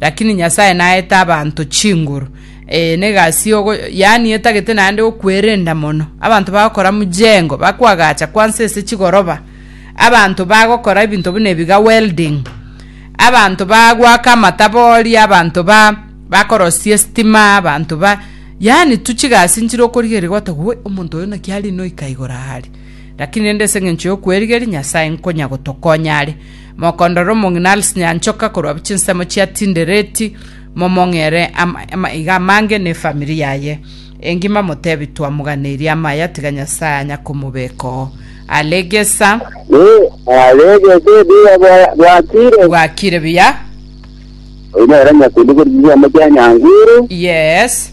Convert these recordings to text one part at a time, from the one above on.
Lakini Nyasae naete abanto chinguru, ee, negasi yogo, yaani etagete naende gokwerenda mono. Abanto bagokora mujengo, bakoagacha kwansa ase chigoroba, abanto bagokora ebinto buna ebi ga welding, abanto bagwaka amatabori, abanto ba bakorosia estima, abanto ba yaani tu chigasi nchire okorigereria gwata gwe omonto oyo naki ari noika igoro are. Lakini rende ase engencho yokwerigeria Nyasae nkonya gotokonya are. Mokondore omong'ina ase nyanchoka korwa chinsemo chiatindereti, momong'ere amaiga amange nefamiri yaye engima motebi twamoganeirie amaya tiga Nyasae anya komobekoo. Alegesa. Ee, alegesa ebiya bwakire. Bwakire biya. Oyo nere nyakundi korisiria omochie nyanguru. Yes.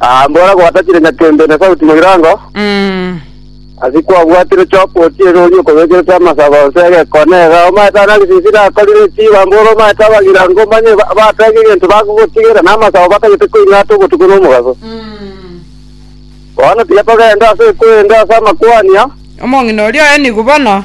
Ah, mbora gwatachire nyakembe na sauti moirango. Mm. Asi kwabwatire choka otiere oria okobekerete amasaba onse egekone ega omaete ana gisisi nakorire chiba mbora omaete abagira ngo manye ba- batege egento bagogotigera na amasaba batagete koing'ata obotuko na omogaso. Mm. Bono tiga togende ase ekwende ase amakwania. Omong'ina oria oye nigo bono.